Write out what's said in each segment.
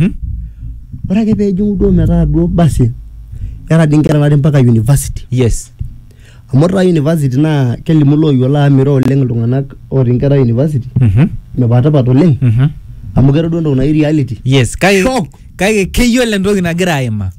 Hmm? ore ake peejing'u duo metaa duo basi era dii inkera natii mpaka university yes amu ore taa university naa kelimu looyiolo amu miro oleng iltung'anak otii inkera university Mhm. mipatipat oleng Mhm. amu keeta duo entoki naji reality yes kake Shock. kake keyiolo entoki nagira aima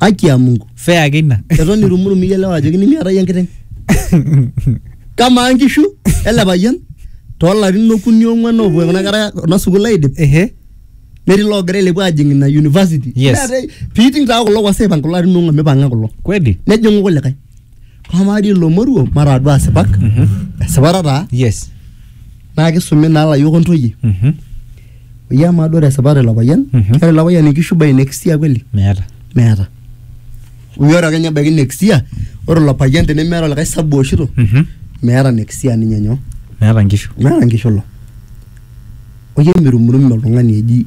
haki ya mungu fea ake ina eton irumurum iyielewa ajo kinimiata iyie enkiteng kamaa nkishu ele payian toolarin okuni ong'uan oopuo kuna kera kuna sukuul aidip ehe netii loogira ailepu ajing ina university Yes. Neetae- piiting taa kulo kwasa aipang kulo arin ong'uan mipang'a kulo kweli nejing'u kulikae Amaa dii ilo moruo mataa duo asipak esipata taa yes naa kisumi naa ilayiok ontoyie Mhm. oyie amaa duo tesipata ilo payian Mhm. keeta ilo payian inkishu by next year kweli meeta meeta oyie ore kenya ebaiki next year ore ilo payian tenemeeta olikae sabu ooshito Mhm. meeta next year ninye nyoo meeta nkishu meeta nkishu ilo oyie mirumurume oltung'ani eji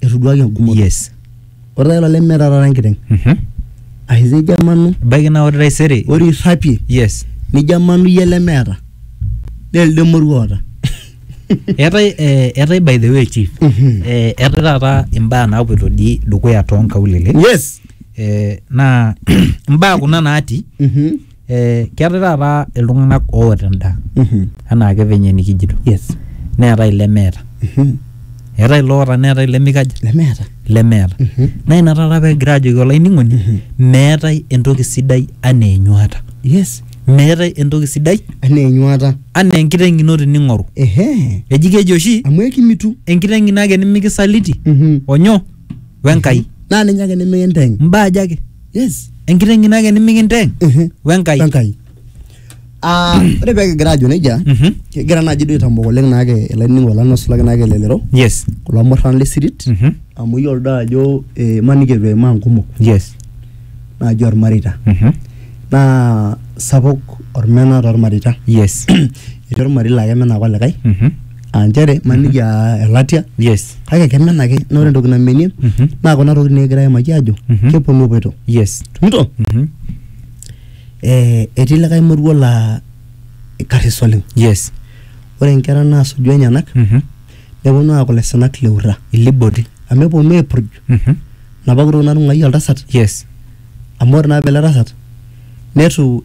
etuduaki engumoto yes ore taata ilo lemeeta taata enkiteng Mhm. ashu tejo emanu ebaiki naa ore taisere ore irrapie yes nijo emanu iyie lemeeta naa elde moruo oota eetae eh, eetae by the way chief Mhm. eh, eetae taata imbaa naapoito dii dukuya toonkaulele yes eh, naa imbaa kuna naati Mhm. Eh, keetae taata iltung'anak oota endaa Mhm. anaake venye nikijito Yes. neetae ilemeeta Mhm. eetae iloota neetae ilemikaja Lemeeta. lemeeta Mhm. naa ina taata pegira ajoki olainining'oni Mhm. meetae entoki sidai anaa enyuata Yes. meetae entoki sidai Anaa enyuata. anaa enkiteng ino tining'oru Ehe. eji keji oshi Amu ekimitu. enkiteng ino ake nimikisaliti Mhm. onyo wenkai Naa ninye ake nemikinteng. mbaa aja ake yes enkiteng ino ake nimikinteng Ehe. wenkai wenkai Ah, ore pee kigira ajo nejia Mhm. kigira naaji duo aitambok oleng naake ilainining'ok lang nosulaki naake elelero yes kulo murran le sirit Mhm. amu iyiolo doi ajo eh, imaniki eitu eimaa nkumok yes naaji ormareita Mhm. naa sapuk ormena tormareita yes etii ormarei laa kemena ake olikae Mhm. aa nchere maniki aa elatia yes kake kemen ake na ore entoki namenie Mhm. naa kuna tokitin nikigira aimaki ajo Mhm. keponu epoito yes tumito Mhm. eh, etii likae moruo laa karis oleng yes ore inkera naasuju enyenak Mhm. neponu aaku laisinak le ura ilibodi amu eponu aipurj Mhm. napa kutuk natung'uayie oltasat yes amu ore naa pele tasat netu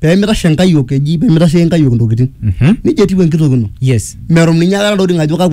pemitashe nkayiok eji pemitashe nkayiok ntokitin Mhm. nejia etiu enkitok ino yes merum ninye akata ntokitin ajo kakwa